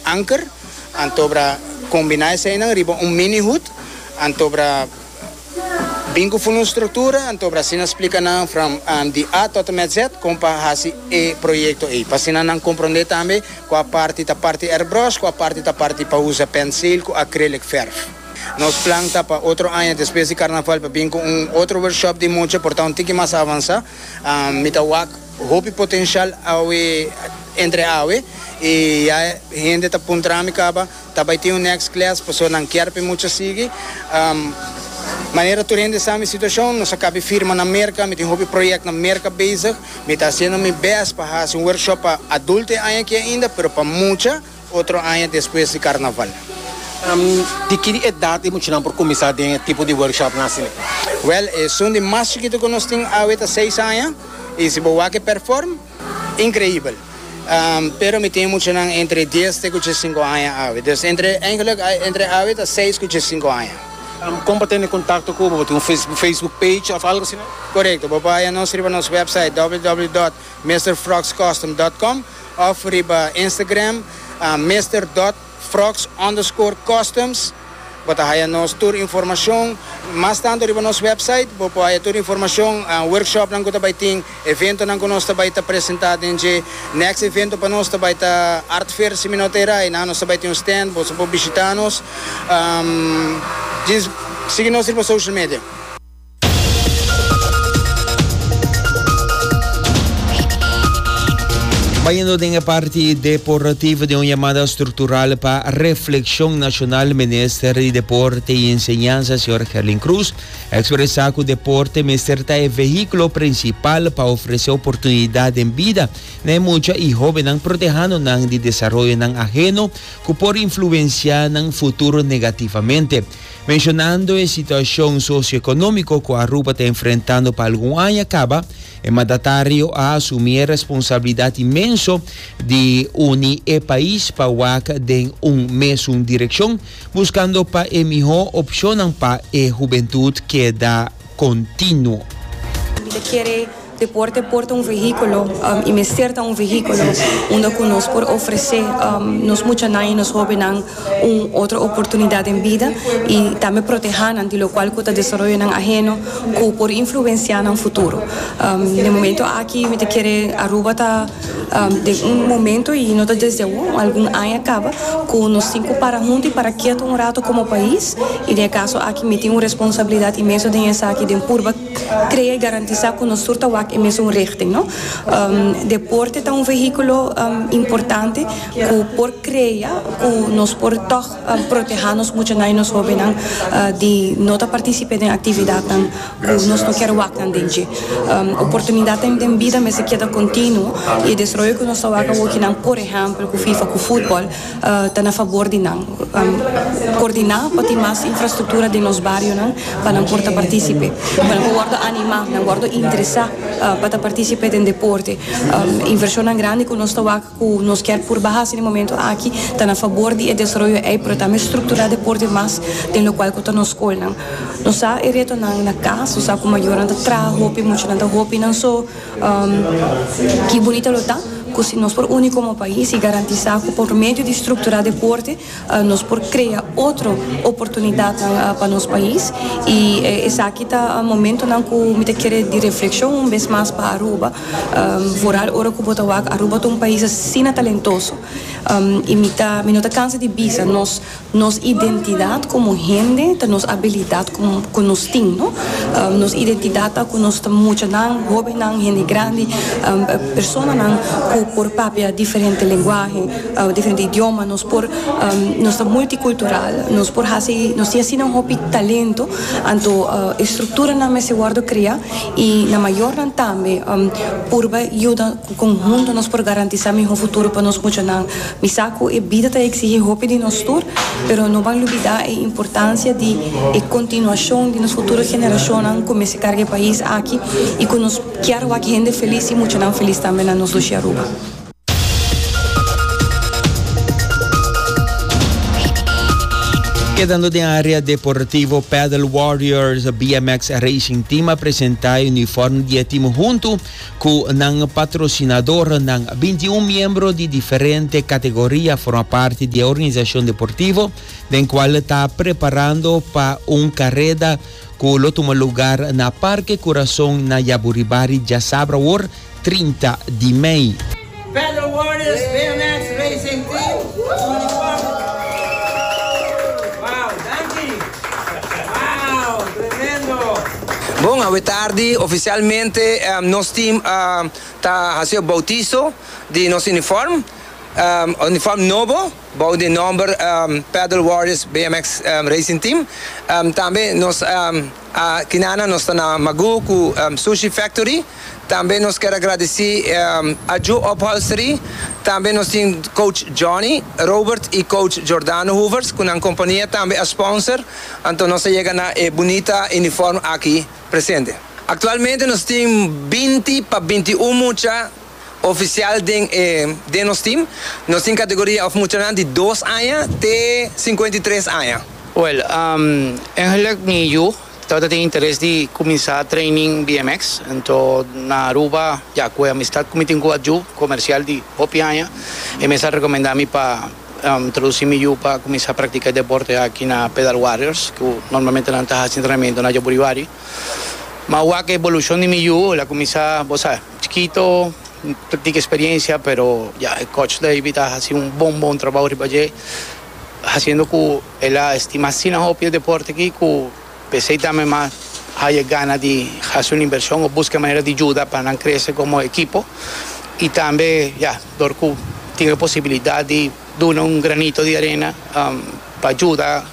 Anker, anto bra kombiná eseinan riba un mini hut, anto bra bin ku fun un struktura, anto bra asina splika nan from di A tòt en mèt Z kon pa hasi e proyekto ei, pa asina nan komprondé tambe ku a parti ta parti airbrush, ku a parti ta parti pa usa pensil ku acrylic verf. Nos plan ta pa otro aña despues di karnaval pa bin ku un otro workshop di mucha por ta un tiki mas avansá, mi ta wak. Hopi potencial awe entre awe y ya hende ta puntra mi caba ta bay tin un next class pasobra nan kier pe mucha sigui. Manera tur hende sa mi situacion nos a cabe firma na Merca, mi tin hopi project na Merca bezig, mi ta haciendo mi best pa haci un workshop pa adulto e aña aki ainda pero pa mucha. Otro aña despues di carnaval. Di ki edad e muchanan por cuminsa den e tipo di workshopnan asina? Wel, esun di mas chikito cu nos tin awe ta seis aña y si bo wak e perform, increibel. Pero mi tin muchanan entre dies te cu djiesinco aña awe. Dus entre, eigenlijk entre awe ta seis cu djiesinco aña. Con pa tene contacto cu bo? Bo tin un facebook page of algo asina? Corecto, bo por haya nos riba nos website www. Mister Frogs Custom dot com of riba Instagram Mister dot Frogs underscore Customs bo ta haya nos tur informacion mas tanto riba nos website bo por haya tur informacion workshop nan cu ta bay tin evento nan cu nos ta bay ta presenta den dje next evento pa nos ta bay ta Art Fair simi no ta era y na nos ta bay tin un stand boso por bishita nos sigui nos riba social media. Bayendo den e parti deportivo den un yamada structural pa reflexion nacional minister di deporte y enseñanza señor Herlin Cruz a expresa cu deporte mester ta e vehiculo principal pa ofrece oportunidad den bida na e mucha y hobennan protehando nan di desaroyonan ajeno cu por influencia nan futuro negativamente. Menshonando e situashon sosioekonómiko ku Aruba ta enfrentando pa algun aña kaba, e mandatario a asumí e responsabilidat inmenso di uni e pais pa wak den un mesun direkshon, buskando pa e mihó opshonnan pa e hubentut keda kontinuo. Deporte por ta un vehículo y mester ta un vehículo unda cu nos por ofrece nos muchanan y nos hobennan un otro oportunidad den bida y tambe protehanan di locual cu ta desaroyonan aheno cu por influencia nan futuro. Na e momento aki mi ta kere Aruba ta den un momento y no ta desde awo, algun aña caba, cu nos tin cu para hunto y para keto un rato como pais y den e caso aki mi tin un responsabilidad inmenso den esaki den purba Krea i garantisá ku nos tur ta wak e mesun richting, no. Deporte ta un vehíkulo importante ku por krea ku nos por tòg protehá nos muchanan i nos hóbennan di no ta partisip'é den aktividatnan ku nos no kier wak nan den dje. Oportunidatnan den bida mester keda kontinuo i e desroyo ku nos ta wak awokinan, por ehèmpel, ku FIFA, ku futbòl, ta na fabor di nan. Koordiná pa tin mas infrastruktura den nos barionan pa nan por ta partísipe, pa nan por wòrdu animá, nan wòrdu interesá pa ta partísipe den deporte. Invershonnan grandi ku nos ta wak ku nos kier por baha si den momentu aki ta na fabor di e desaroyo ei pero tambe strukturá deporte mas den lokual ku ta nos skolnan. Nos sa e retonan na kas, nos sa ku mayornan ta traha hopi, muchanan ta hopi nan so. Ki bunito lo ta ku si nos por uni komo pais i garantisá ku por medio di strukturá deporte nos por krea otro oportunidatnan pa nos pais. I esaki ta momentonan ku mi ta kere di reflekshon un bes mas pa Aruba, vooral ora ku bo ta wak Aruba ta un pais asina talentoso i mi ta mi no ta kansa di bisa nos. Nos identidat komo hende ta nos abilidat ku nos tin. Nos identidat ta ku nos ta muchanan, hóbennan, hende grandi, personanan ku por papia diferente lenguahe, diferente idioma. Nos por nos ta multikultural, nos por hasi nos tin asina hopi talento anto e strukturanan mester wòrdu kreá i na mayornan tambe purba yuda. Cu conhunto nos por garantisa miho futuro pa nos muchanan? Mi sa cu e bida ta exigi hopi di nos tur, pero no ban lubida e importancia di e continuacion di nos futuro generacionnan cu mester carga e pais aki y cu nos kier wak hende feliz y muchanan feliz tambe na nos luchi Aruba. Kedando den area deportivo, Padel Warriors BMX Racing Team a presenta e uniform di e team hunto Ku nan patrosinadornan, binti i un miembro di diferente kategoria forma parti di e organisashon deportivo, den kual ta preparando pa un kareda ku lo tuma lugar na Parke Kurason na Yaburibari djasabra awor trinta di mei. Pedro Warriors BMX Racing Team Uniform Wow danki Wow tremendo. Bon, awe tardi oficialmente nos team ta haci'o bautizo di nos uniform, uniform nobo bou den nomber Pedro Warriors BMX Racing Team, tambe nos. Tinana nos ta na Magoo ku Sushi Factory. Tambe nos ker a gradisí Ajo Upholstery. Tambe nos tin coach Johnny Robert i coach Jordano Hoevers ku nan kompania tambe a sponsor. Anto nos a yega na e bunita uniform aki presente. Aktualmente nos tin binti pa binti un mucha. ofisial den e den nos tim. Nos tin kategoria òf muchanan di dos aña te sinkuenta i tres aña. Wèl, eigentlek mi yu tabata tin interes di kuminsá training bmx. Anto na Aruba, ya ku e amistat ku mi tin ku Adju, komersial di hopi aña, e mes a rekomendá mi pa introdusí mi yu pa kuminsá praktiká e deporte aki na Pedal Warriors, ku normalmente nan ta hasi entrenamentu na Jaburiwari. Ma wak e ebolushon di mi yu el a kuminsá, bo sa. Chikito N ta tin eksperiencia pero ya e coach Davy ta hasi un bon bon trabou riba dje hasiendo ku el a estima asina hopi e deporte aki ku p'esei tambe m'a haya gana di hasi un invershon o buska e manera di yuda pa nan krese komo ekipo i tambe ya dor ku tin e posibilidat di. Duna un granito di arena pa juda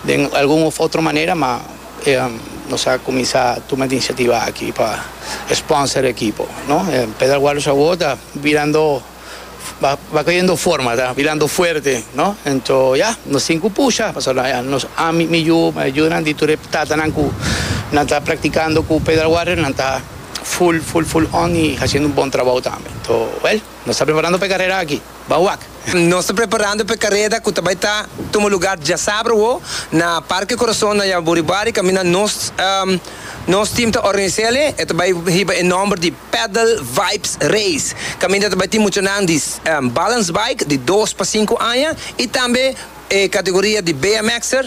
den algun of otro manera ma nos a kuminsá tuma e inisiativa aki pa sponsor e ekipo no. Pedal Warriors awor ta birando ba koyendo forma ta birando fuerte no ento ya nos tin ku pusha pasobra ya nos ami mi yu mi yunan di tur e tatanan ku nan ta praktikando ku Pedal Warriors nan ta full full full on i hasiendo un bon trabou tambe ento wèl. Nos ta preparando pa e kareda aki, ba wak! Nos ta preparando pa e kareda ku ta bai ta tuma lugar djasabra wo na Parke Corazon na Yaburi Bari kaminda nos nos team ta organisá el e e ta bai hiba e nòmber di Paddle Vibes Race kaminda ta bai tin muchanan di balance bike di dos pa sinku aña i tambe e kategoria di BMXer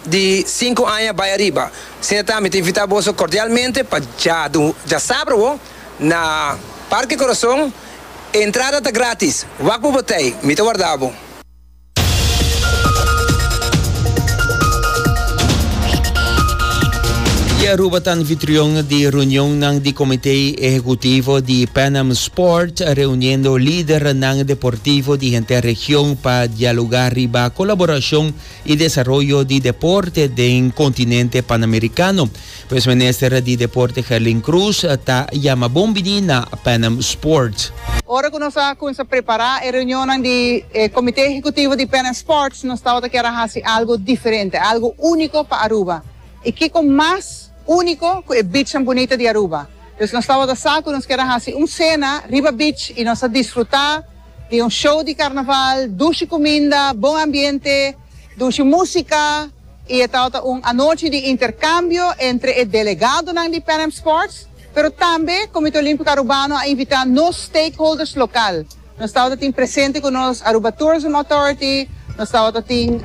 di sinku aña bai ariba. Asina ta mi ta invitá boso kordialmente pa djadu djasabra wo. Na Parke Corazon e entrada ta gratis. Wak bo batey, mi ta warda bo. Di Aruba ta anfitrion di reunionnan di Comité Ehecutivo di Pan Am Sport, reuniendo lidernan deportivo di henter region pa dialoga riba colaboracion y desaroyo di deporte den continente Panamericano. Pues Minister di Deporte Gerlin Cruz ta yama bon bini na Panem Sports. Ora cu nos a cuminsa prepara e reunionnan di e Comité Ejecutivo di Panem Sports nos tabata kier a haci algo diferente, algo unico pa Aruba. Y kico mas unico cu e beachnan bunita di Aruba. Pues nos tabata sa cu nos kier a haci un cena riba beach y nos a disfruta di un show di carnaval, dushi cuminda, bon ambiente. Dushi músika i e tabata un anochi di interkambio entre e delegadonan di Pan Am Sports, pero tambe Komité Olímpiko Arubano a invitá nos stakeholders lokal. Nos tabata tin presente ku nos Aruba Tourism Authority, nos tabata tin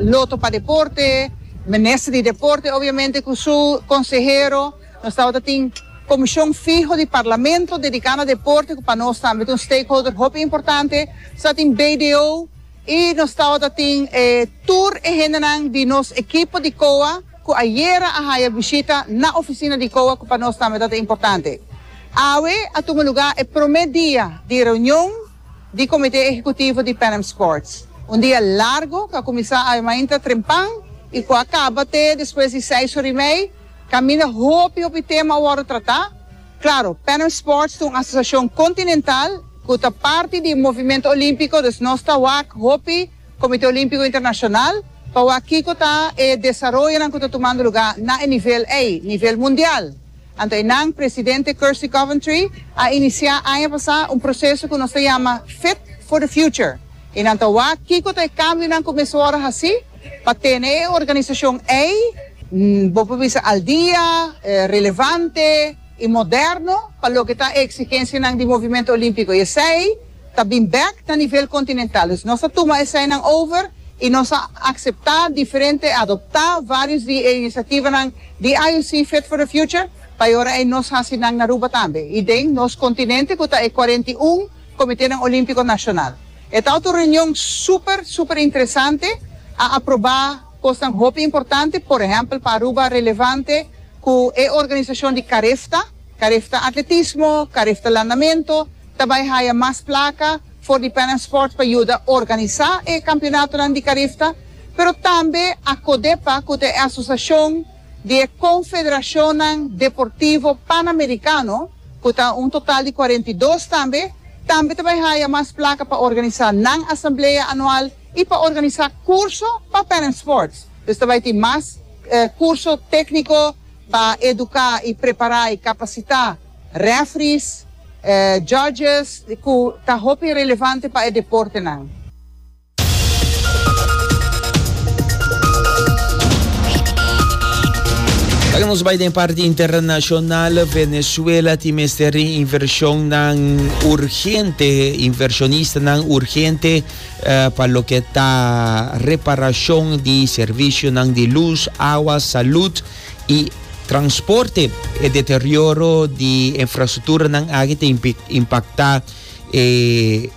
Loto pa Deporte, Minister di Deporte obviamente ku su konsehero, nos tabata tin komishon fiho di Parlamento dediká na deporte ku pa nos tambe ta un stakeholder hopi importante, nos tabata tin BDO, Y nos tabata tin e tur e hendenan di nos ekipo di COA cu ayera a haya bishita na oficina di COA cu pa nos tambe tabata importante. Awe a tuma luga e prome dia di reunion di comite ehecutivo di Pan Am Sports. Un dia largo cu a cuminsa awe mainta trempan y cu a caba te despues di seis ora y mei. Caminda hopi hopi tema a wordo trata. Claro, Pan Am Sports ta un asociacion continental cu ta parti di Movimento Olimpico, dus nos ta wak hopi Comite Olimpico Internacional pa wak kico ta e desaroyonan cu ta tumando luga na e nivel ey, nivel mundial. Anto eynan, Presidente Kirsty Coventry a inicia aña pasa un proceso cu nos ta yama Fit for the Future y nan ta wak kico ta e cambionan cu mester wordo haci, Pa tene e organisashon ei bo por bisa al dia, relevante i moderno pa loke ta e eksigensianan di Movimentu Olímpiko i esei ta bin bèk na nivel kontinental. Dus nos a tuma eseinan over i nos a akseptá diferente, adoptá vários di e inisativanan di IOC Fit for the Future pa e ora ei nos hasi nan na Aruba tambe i den nos kontinente ku ta e kuarenta i un Comiténan Olímpico Nacional. E ta otro reunion super, super interesante. A aproba cosnan hopi importante, por ehempel pa Aruba relevante cu e organisacion di carefta, carefta atletismo, carefta landamento, ta bay haya mas placa for di Pan Am Sports pa yuda organisa e campeonatonan di carefta, pero tambe a codepa cu ta e asociacion, di e Konfederashonnan Deportivo Panamerikano, ku ta un total di kuarenta i dos tambe, tambe ta bai haya mas plaka pa organisá nan asamblea anual i pa organisá kurso pa Panam Sports. Pues ta bai tin mas kurso tékniko pa eduká i prepará i kapasitá rèfris, jòdjes ku ta hopi relevante pa e deportenan. Oca nos bai den parti internacional, Venezuela tin mester di inversionnan urgente, inversionistanan urgente uh, pa loke ta reparacion di servicionan di luz, awa, salud y transporte. E deterioro di infrastructuranan aki ta impacta e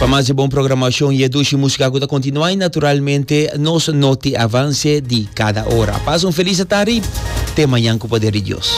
Pa mas di bon programashon y e dushi musika ku ta kontinuá y naturalmente nos noti avanse di kada ora. Pasa un felis tardi, te mañan ku poder di Dios.